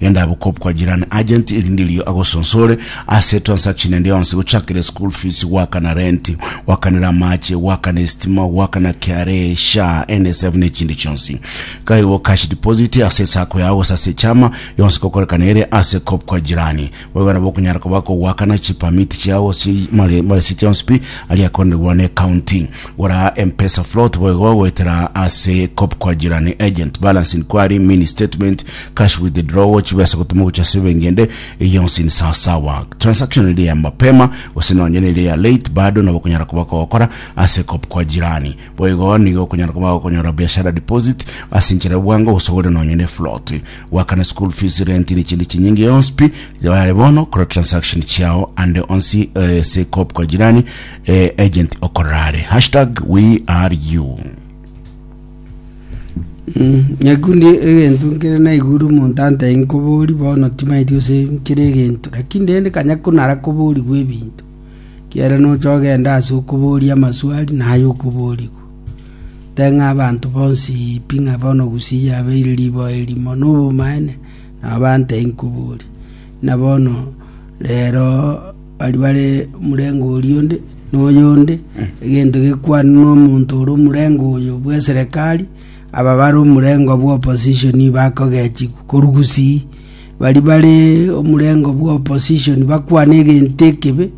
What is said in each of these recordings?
Genda bukop kwa jirani agent erinde riria agosonsore ase transaction ende yonsi gochakera school fees goakana rent goakanera amache goakana estima goakana KRA SHA NSF ne chindi chionsi kaigo cash deposit ase esako yao gose ase echama yonsi gokorekana ere ase kop kwa jirani Boigo nabo okonyara koba kogoakana chipermit chiao ase mare ase chionsi pi aria akorenigwa ne county. Gora M-Pesa float boigo goetera ase kop kwa jirani agent, balance inquiry, mini statement, cash withdrawal, chibesa gotuma gochia ase ebenki ende, eye yonsi ni sawa sawa. Transaction eri ya mapema gose nonye nere ya late bado nabo okonyara koba kogokora ase kop kwa jirani. Boigo nigo okonyara koba gokonyora biashara deposit ase enchera ya obwango gose ogore nonye ne float. goakana school fees rent ne chindi chinyinge yonsi pi yare bono kora transaction chiao ande onsi eh, se cop kwa jirani eh, agent okorare hashtag we are you nyaku ndi egento nkere naigure omonto antai nkobori bono timaeti ose nkere egento lakini rende kanya kunara koborigwa ebinto kiara nocha ogenda ase okoboria amaswali naye okoborigwa Teng'a abanto bonsi pi ng'a bono gusii yabeire riboa erimo nobomaene, nao bante inkuburi. Ng'a bono rero baria bare omorengo oria onde na oyonde, egento gekwane nomonto ore omorengo oyo bw'eserekari, aba bare omorengo bw'opposition bakogechigwa korwa gusii. Baria bare omorengo bw'opposition bakwane egento ekebe,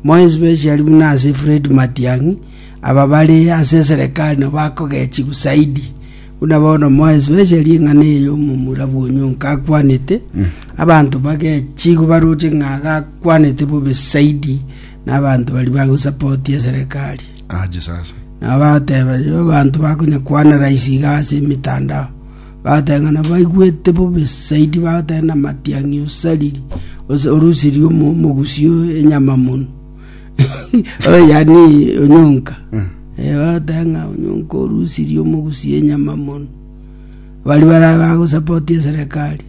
More especially buna ase Fred Matiang'i, aba bare ase eserekari nabo bakogechigwa zaidi, buna bono more especially eng'ana eye omomura bwa Onyonka akwanete, abanto bagechigwa baroche ng'a gakwanete bobe zaidi na abanto bari bagosapoti eserekari. Aje sasa. Nabo bateba, "Yo, abanto bakonya kwanaraisi iga ase emetandao. Bagateng'ena baigwete bobe saidi, bagateng'ena amatiang'i osariri, ose orusiri omo omogusio enyama mono. Oyo yani onyonka. Eh, bagateng'a onyonka orusiri omogusio enyama mono. Bari bara bagosapoti eserekari.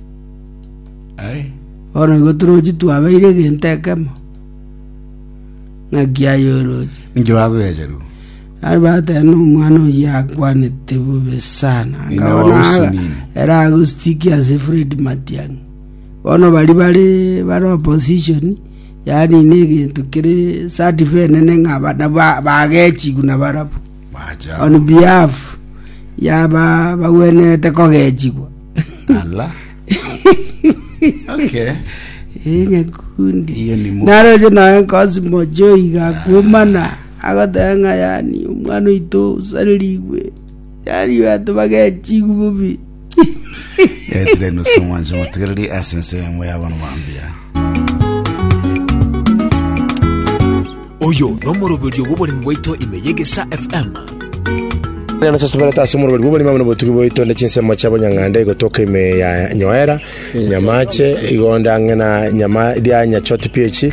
Aye. Bono igo torochi twabeire egento ekemo. Ng'aki aye oroche. Ninki babegerwa? Naende bagateba, Nomwana oyio akwanete bobe sana, Ng'ina wa akabona Usu aga- nini? ere agositikia ase Fred Matiang'i. Bono baria bare bare opposition, yaani na egento kere certified nene ng'a bana ba- bagechigwa na barabwo Macha. on behalf ya ba- bagwenerete kogechigwa Ala. Okay. Eh, nyakundi Hiyo ni mu- naroche naye nkosimo joiga kumana Agoteba ng'a Yohani, omwana oito osarerigwe, Yohani oyo atobaga eching'u bobe. Etire nusu omwanche motigereri ase ense yamwe y'abanto bambia. Oyo nomoroberio bw'oboremi bwaito ime y'egesa FM. Neno tosuberete ase omoroberi bw'oboremi amo nobotugi bwaito ande chinsemo chia bonyang'anda igotoka ime ya Nyoera, Nyamache, igo onde ang'e na Nyama ria Nyachoti PH,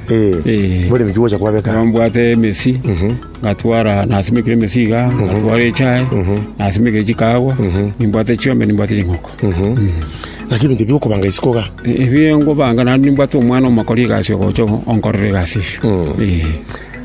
Eh. Eh. Bore miki gocha kwabeka. Nambwate emesi ngatwara nasimikire emesi iga ngatwara echae nasimikire chikagwa nimbwate chiombe nimbwate chinkoko Lakini bintu biko kobanga isiko ga. E- ebio ngobanga naende nimbwate omwana omokori egasi ogocha onkorera egasi eyio Eh.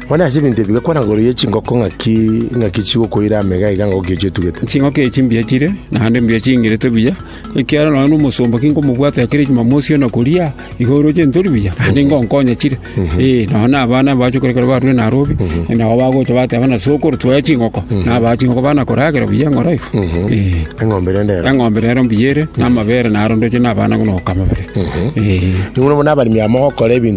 Bone ase bintu ebi gakwana goro ye chingoko ngaki ngaki chigokoira amega iga ngoki chitugete. chinkoko echi mbuya chire naende mbuya chingirete buya Ekiagera nonya nomosomba kinkomobwata ekero Jumamosi yo na koria, igo oroche ntori buya, naende ngonkonye chire. Ee, nonya na abana mbache korwa ekero barure Nairobi, nabo bagocha bateba ng'a sokoro twaye chingoko, nabaa chingoko bana koragera buya eng'oro iga. Ee. Eng'ombe rende ero. Eng'ombe rero mbuya ere, na amabere naro ndoche na abana buna gokama bare. Ee. Nigo bono abaremi aba mogokora ebinto